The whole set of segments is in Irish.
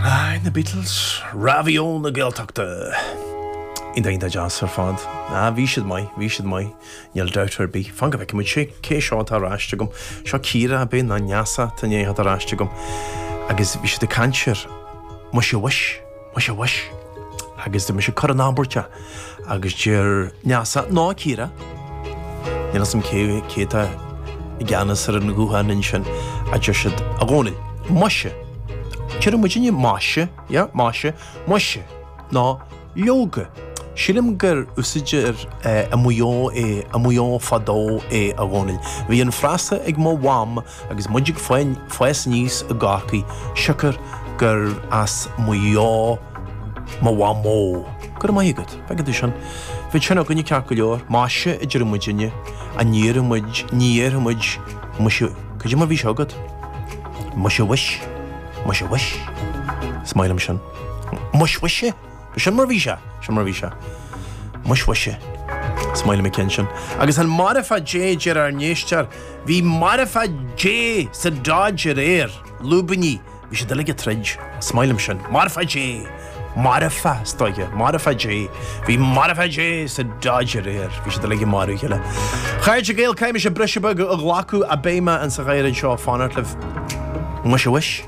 Aye, na Beatles, Raidió na Gaeltachta. Ní dóigh dá deas ar fad. Ah, bhí siad maith, bhí siad maith. Níl dabht ar bith. Fan go bhfeice muid sé, cé seo atá ar ais agam? Seo Ciara, ab ea, nó Neasa, tá Neasa ar ais agam. Agus bhí siad ag caint ar Muise Mhuis. Muise, mhuis. Agus tá mise á chur in abairt agus deir Neasa, nó Ciara. Níl 'fhios a'm cé, cé tá i gceannas ar an ghuthán ansin, a deir siad. A Dhónaill, maise. Deireadh muidinne, maise, yeah, maise. Muise, nó leoga. Sílim gur úsáidtear i Maigh Eo é, i Maigh Eo fadó é, a Dhónaill. Bhí an frasa ag mo mham Agus muid ag fás aníos i gCorcaigh, siocair gur as Maigh Eo mo mhamó, go raibh maith agat, féach ansin, bhí sin againne ceart go leor, maise a deireadh muidinne, a ní déarfadh muid, ní déarfadh muid muise, cad é mar bhí sé agat? muise mhuis, muise mhuis, is maith liom sin, muis mhuise! B'shin mar bhí sé, sin mar bhí sé. Muis mhuise, is maith liom an ceann sin. Agus an marfach Dé a deir ár n-éisteoir, bhí marfach Dé sa Dodge aréir, lúibíní, bhí siad uilig ag troid, is maith liom sin, marfach Dé, marfach, is dóiche, marfach Dé, bhí marfach Dé sa Dodge aréir, bhí siad uilig ag marú a chéile. Chairde Gael, caithfidh mise briseadh beag a ghlacadh, a beidh mé ar ais gan mhoill anseo, fanaigí liom. Muise mhuis.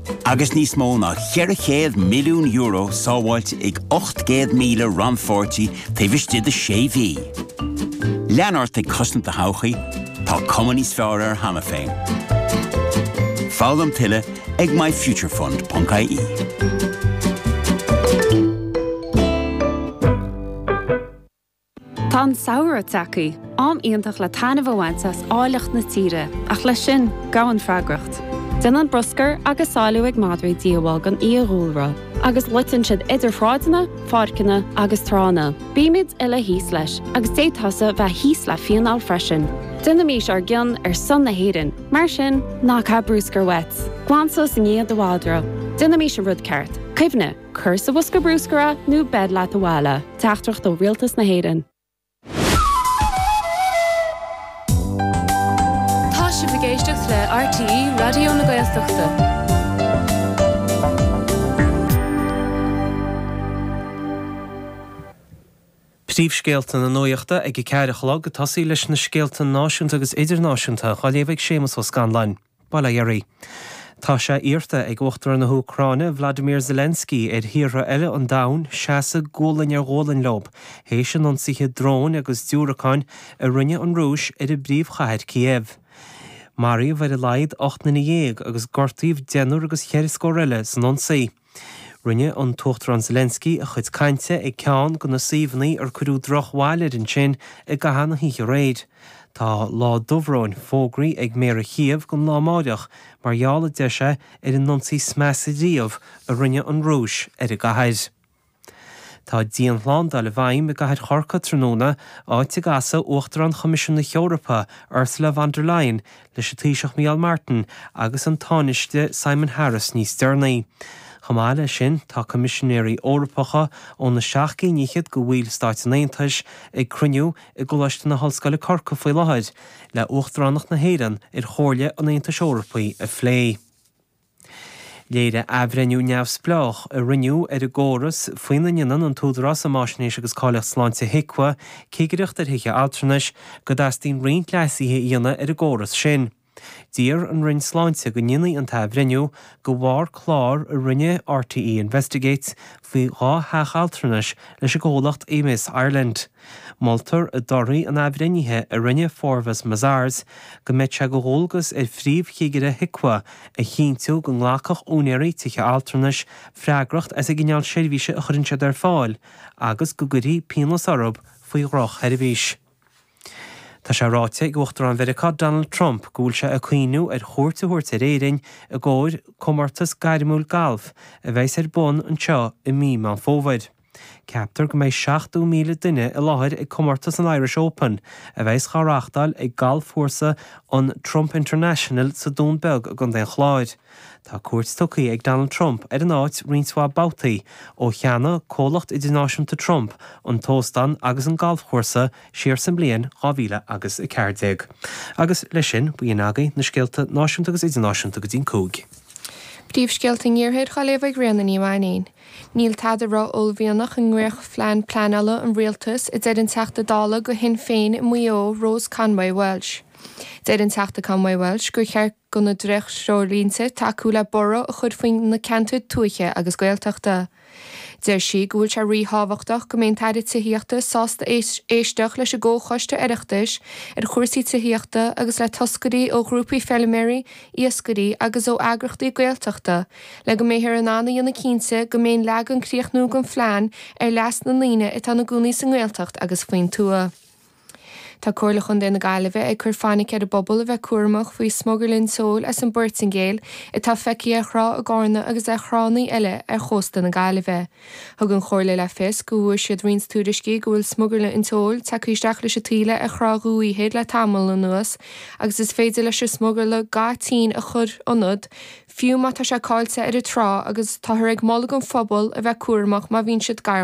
Agus níos mó ná €400 milliún sábháilte ag 800,000 rannpháirtí taobh istigh de sé mhí, lean ort ag cosaint do thodhchaí, tá cuma níos fearr air cheana féin. Foghlaim tuilleadh ag MyFutureFund.ie. Tá an samhradh tagtha, am iontach le taitneamh a bhaint as áilleacht na tíre, ach leis sin, gabhann freagracht. Déanann bruscar agus sálú ag madraí díobháil don fhiadhúlra, agus loiteann siad idir shráideanna, páirceanna agus tránna. Bímid uile thíos leis, agus d'fhéadfá tusa bheith thíos le fíneáil freisin. Déanaimis ár gcion ar son na hÉireann, mar sin, ná caith bruscar uait. Glan suas i ndiaidh do mhadra. Déanaimis an rud ceart. Cuimhnigh. Cuir sa bhosca bruscair é nó beir leat abhaile é. Teachtaireacht ó Rialtas na hÉireann. Tá sibh ag éisteacht le RTÉ Raidió na Gaeltachta. Príomhscéalta na Nuachta ag a ceathair a chlog, i dtosach leis na scéalta náisiúnta agus idirnáisiúnta, á léamh ag Séamus Ó Scanláin. Ba léir í. Tá sé iarrta ag Uachtarán na hÚcráine, Volodymyr Zelensky, ar thíortha eile an domhain seasamh gualainn ar ghualainn leob, théis an ionsaithe dróin agus diúracáin a rinne an Rúis ar an bpríomhchathair Kyiv. Maraíodh ar a laghad ocht nduine dhéag agus gortaíodh deichniúr agus cheithre scór eile san ionsaí. Rinne an tUachtarán Zelensky a chuid cainte ag ceann de na suíomhanna ar cuireadh drochbhail air ansin i gcaitheamh na hoíche aréir. Tá lá dubhróin fógraí ag Méara Kyiv don lá amáireach mar gheall, a deir sé, ar an ionsaí is measa riamh a rinne an Rúis ar an gcathair. Tá dianshlándáil i bhfeidhm i gcathair Chorcaí tráthnóna, áit a gcasfaidh Uachtarán Choimisiún na hEorpa, Ursula von der Leyen, leis an Taoiseach Mícheál Martin agus an Tánaiste Simon Harris níos deireanaí. Chomh maith leis sin, tá Coimisinéirí Eorpacha ó na seacht gcinn fhichead de bhallstáit an Aontais ag cruinniú i gColáiste na hOllscoile Corcaigh faoi láthair le hUachtaránacht na hÉireann ar Chomhairle an Aontais Eorpaigh a phlé. Léirigh athbhreithniú neamhspleách a rinneadh ar an gcóras faoina ndéanann an tÚdarás um Fháisnéis agus Cáilíocht Sláinte HIQA cigireacht ar thithe altranais go dteastaíonn roinnt leasuithe a dhéanamh ar an gcóras sin. D'iarr an Roinn Sláinte go ndéanfaí an t-athbhreithniú de bharr clár a rinne RTÉ Investigates faoi dhá theach altranais leis an gcomhlacht Emeis Ireland. Moltar i dtorthaí an athbhreithnithe a rinne Forvis Mazars go mbeadh sé de dhualgas ar Phríomhchigire HIQA a chinntiú go nglacfadh úinéirí tithe altranais freagracht as an gcineál seirbhíse a chuireann siad ar fáil agus go gcuirfí pionós orthu faoi dhrochsheirbhís. Tá sé ráite ag Uachtarán Mheiriceá Donald Trump go bhfuil sé ag cuimhniú ar chuairt a thabhairt ar Éirinn i gcomhair comórtas gairmiúil gailf a bheas ar bun anseo i mí Meán Fómhair. Ceaptar go mbeidh 70,000 duine i láthair ag comórtas an Irish Open, a bheas dhá reáchtáil ag galfchúrsa an Trump International sa Dún Beag i gContae an Chláir. Tá cuairt tugtha ag Donald Trump ar an áit roinnt mhaith babhtaí ó cheannaigh Comhlacht Idirnáisiúnta Trump an t-óstán agus an galfchúrsa siar sa mbliain 2014. Agus leis sin, b'in agaibh na scéalta náisiúnta agus idirnáisiúnta go dtí'n cúig. Príomhscéalta an Iarthair á léamh ag Ríona Ní Mhainín. Níl tada ró-uaillmhianach i ndréachtphlean pleanála an rialtais, a deir an Teachta Dála do Shinn Féin i Maigh Eo, Rose Conway-Walsh. Deir an Teachta Conway-Walsh gur cheart do na dréacht-threoirlínte tacú le borradh a chur faoi na ceantair tuaithe agus Gaeltachta. Deir sí go bhfuil sé ríthábhachtach go mbeidh an tAire Tithíochta sásta éisteacht leis an gComhchoiste Oireachtais ar chúrsaí tithíochta agus le toscairí ó ghrúpaí feilméaraí, iascairí agus ó eagrachtaí Gaeltachta. Le go mbeifear in ann a dhéanamh cinnte go mbeidh an leagan críochnúil den phlean ar leas na ndaoine atá ina gcónaí sa nGaeltacht agus faoin tuath, tá Comhairle Chontae na Gaillimhe ag cur fainic ar an bpobal a bheith cúramach faoi smugairle an tseoil as an bPoirtingéil atá feicthe ar thrá i gCárna agus ar thránna eile ar chósta na Gaillimhe. Thug an Chomhairle le fios go bhfuair siad roinnt tuairiscí go bhfuil smugairle an tseoil tagtha isteach leis an taoille ar Thrá Dhumhaí Thoir le tamall anuas agus is féidir leis an smugairle ga tinn a chur ionat fiú má tá sé caillte ar an trá, agus táthar ag moladh don phobal a bheith cúramach má bhíonn siad gar